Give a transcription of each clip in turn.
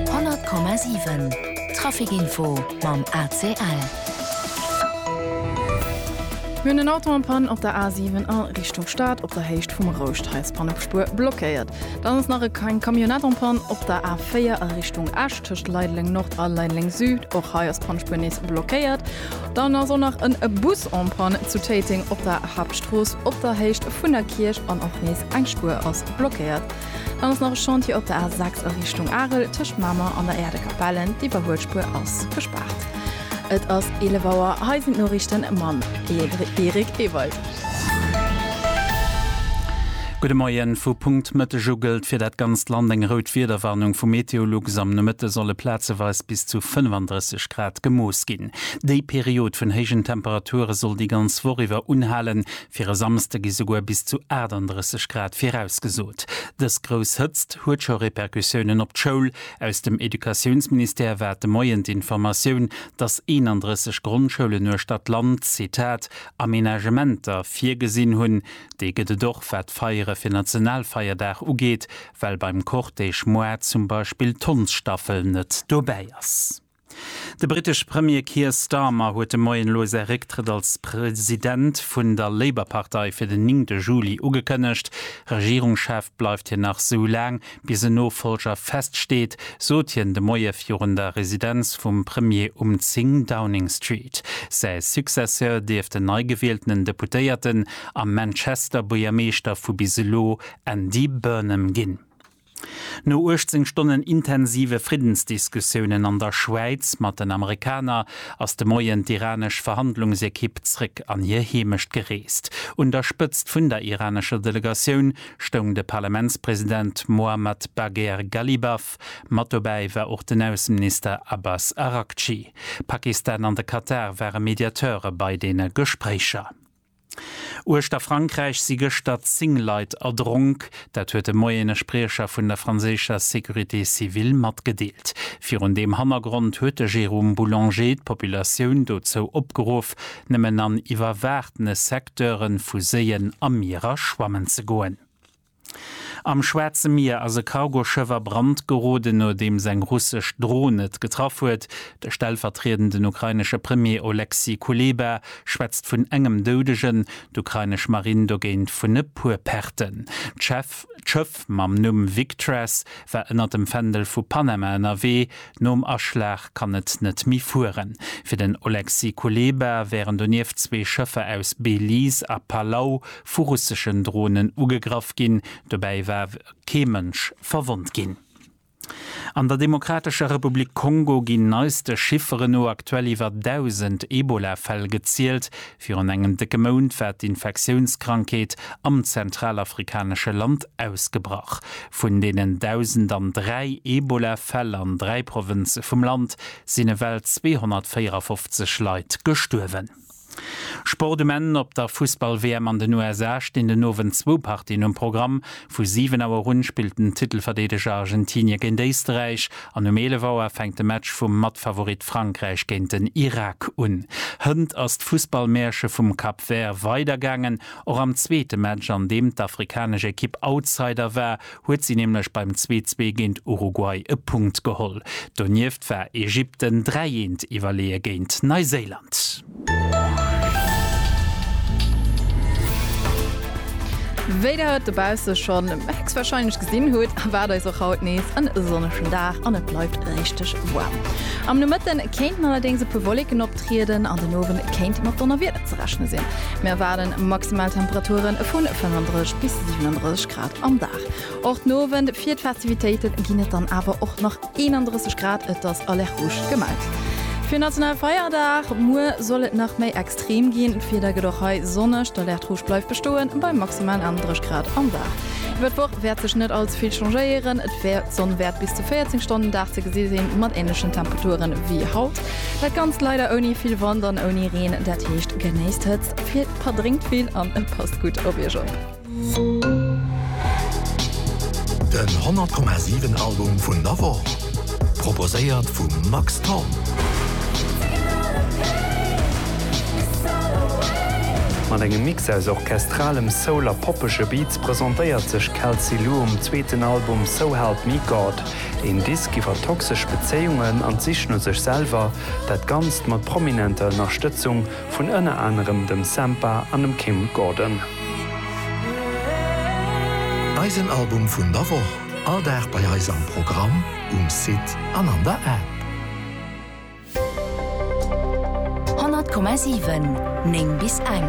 100,7 Traficinfo mam ACL. Mir hunn en Auto en Panne op der A7 a Richtung Stad op der Héicht vum Rouscht. Hei ass d'Pann op Spuer blockéiert. Dann ass nach eng Camionnette en Panne op der A4 a Richtung Esch tëscht Leideleng Nord a Leideleng Süd. Och hei ass d'Pannspuer nees blockéiert. Dann ass och nach en Bus en Panne zu Téiteng op der Haaptstrooss op der Héicht vun der Kierch an och nees eng Spuer ass blockéiert. Dann ass nach e Chantier op der A6 a Richtung Arel tëscht Mamer an der Äerdekapellen, d'Iwwerhuelspur ass gespaart. Et ass 11 Auer, hei sinn d'Noriichten mam Eric Ewald. Gudde Moien, Vu Punkt Mëtteg u gëllt fir dat ganzt Land eng rout Wiederwarnung vu Meteolux. Am Nomëtte solle plazeweis bis zu 35 Grad gemooss ginn. Déi Period vun héijen Temperature soll déi ganz Woch iwwer unhalen, Fir e Samsde gi souguer bis zu 38 Grad virausgesot. Dës grouss Hëtzt huet scho Repercussiounen op d'Schoul. Aus dem Educatiounsministère war de Moien d'Informatioun, datt 31 Grondschoulen uechter d'Land, Zitat, Amenagementer virgesinn hunn. Déi gëtt et och, wat d'Feiere fir Nationalfeierdag ugeet, well beim Cortège Moar zum Beispill d'Hondsstaffel net dobäi ass. De britesche Premier Keir Starmer huet de Moien elo säi Récktrëtt als President vun der Labour-Partei fir den 9 de Juli ugekënnegt. Regierungschef bleift hien nach sou laang, bis en Nofollger feststeet, sot hien de Moie virun der Residenz vum Premier um 10 Downing Street. Säi Successeur dierft den neigewieltenen Deputéierten a Manchester-Buergermeeschter vu bis elo Andy Burnham ginn. No 18 Stonnen intensive Friddensdiskussiounen an der Schwäiz mat den Amerikaner ass de Moien d'iranesch Verhandlungsekipp zréck an hir Heemecht gereest. Un der Spëtzt vun der iranescher Delegatioun stoung de Parlamentspresident Mohammad Bagher Ghalibaf. Mat dobäi war och den Ausseminister Abbas Araghchi. Pakistan an de Katar ware Mediateure bei deene Gespréicher. Uechter Frankräich si gëschter 10 Leit erdronk. Dat huet de Moien e Spriecher vun der franséischer Sécurité civile matgedeelt. Virun deem Hannergrond huet de Jérôme Boulanger d'Populatioun dozou opgeruff, nëmmen an iwwerwaachtene Secteure vu Séien a Mierer schwammen ze goen. Am Schwaarze Mier ass e Cargoschëff a Brand geroden, nodeems eng russesch Dron et getraff huet. De stellvertriedenden ukrainesche Premier Oleksii Kuleba schwätzt vun engem Doudegen, d'ukrainesch Marinn dogéint vun e puer Perten. D'Schëff mam Numm Victress war ënner dem Fändel vu Panama ënnerwee. Nom Aschlag kann et net méi fueren. Fir den Oleksii Kuleba wären donieft zwee Schëffer aus Belize a Palau vu russeschen Dronen ugegraff ginn. Dobäi war kee Mënsch verwonnt ginn. An der Demokratescher Republik Kongo ginn neiste Chifferen no aktuell iwwer 1.000 Ebola-Fäll gezielt. Virun engem décke Mount war d'Infektiounskrankheet am zentralafrikanesche Land ausgebrach. Vun deenen 1.000 an dräi Ebola-Fäll an dräi Provënze vum Land sinn ewell 254 Leit gestuerwen. Sport um Enn, Op der Fussball-WM an den USA stinn den Owend zwou Partien um Programm. Vu 7 Auer un spillt den Titelverdeedeger Argentinie géint Éisterräich an um 11 Auer fänkt de Match vum Matfavorit Frankräich géint den Irak un. Hënt ass d'Fussballmäerche vum Cap Vert weidergaangen. Och am zweete Match, an deem d'afrikanesch Ekipp Outsider war, huet si nämlech beim 2-zwee géint Uruguay e Punkt geholl. Donieft war Ägypten 3 eent iwwerleeë géint Neiséiland. Wéi der et dobausse schonn héchstwarscheinlech gesinn hutt, erwaart eis och haut nees e sonnegen Dag an et bleift richteg waarm. Am Nomëtte kéinten allerdéngs e puer Wolleken optrieden an den Owend kéint mat Donnerwieder ze rechne sinn. Mir erwaarde maximal Temperature vu 35 bis 37 Grad am Dag. Och den Owend fir d'Festivitéite ginn et dann awer och nach 31 Grad, et ass Alerte Rouge gemellt fir nationale Feierdag. Muer soll et nach méi extrem ginn, d'Wieder gëtt och hei sonneg, d'Alerte Rouge bleift bestoen bei maximal 31 Grad am Dag. Iwwer d'Woch wäert sech net allze vill changéieren, d'Sonn wäert bis zu 14 Stonnen um Dag ze gesi sinn, mat änlechen Temperature wéi haut. Dat Ganzt leider ouni vill Wand an ouni Reen, dat heescht genéisst d'Hëtzt, verdréngt vill an passt gutt op Iech op. Den 100 Komma 7 Album vun der Woch, proposéiert vum Max Thorn. Mat engem Mix aus orchestralem Soul a poppege Beats presentéiert sech Kelsey Lu um zweeten Album So Help Me God, een Disk iwwer toxesch Bezéiungen an d'Sich no sech selwer, dat Ganzt mat prominenter Ënnerstëtzung vun ënner anerem dem Sampha an dem Kim Gordon. Eisen Album vun der Woch, all Dag bei eis am Programm, um Site an an der App. 100,7, 9 bis eng.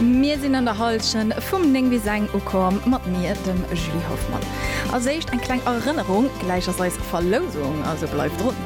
Mir sinn an der Hallschent vum 9 bis eng ukomm, mat mir, dem Julie Hoffmann. Als éischt eng kleng Erënnerung, gläich ass eis Verlousung, also bleift drun!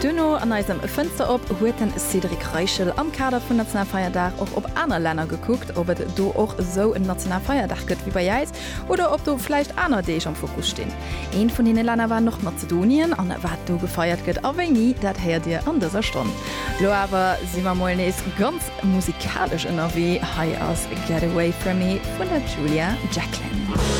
Duerno an eisem Fënster op huet den Cédric Reichel am Kader vun Nationalfeierdag och op aner Länner gekuckt, ob et do och esou en Nationalfeierdag gëtt wéi bei äis oder ob do vläicht aner Deeg am Fokus stinn. Eent vun deene Länner war Nordmazedonien an wat do gefeiert gëtt a wéini, dat héiert dir an dëser Stonn. Lo awer si mer mol nees ganz musikalesch ënnerwee, hei ass Get Away From Me vun der Julia Jacklin.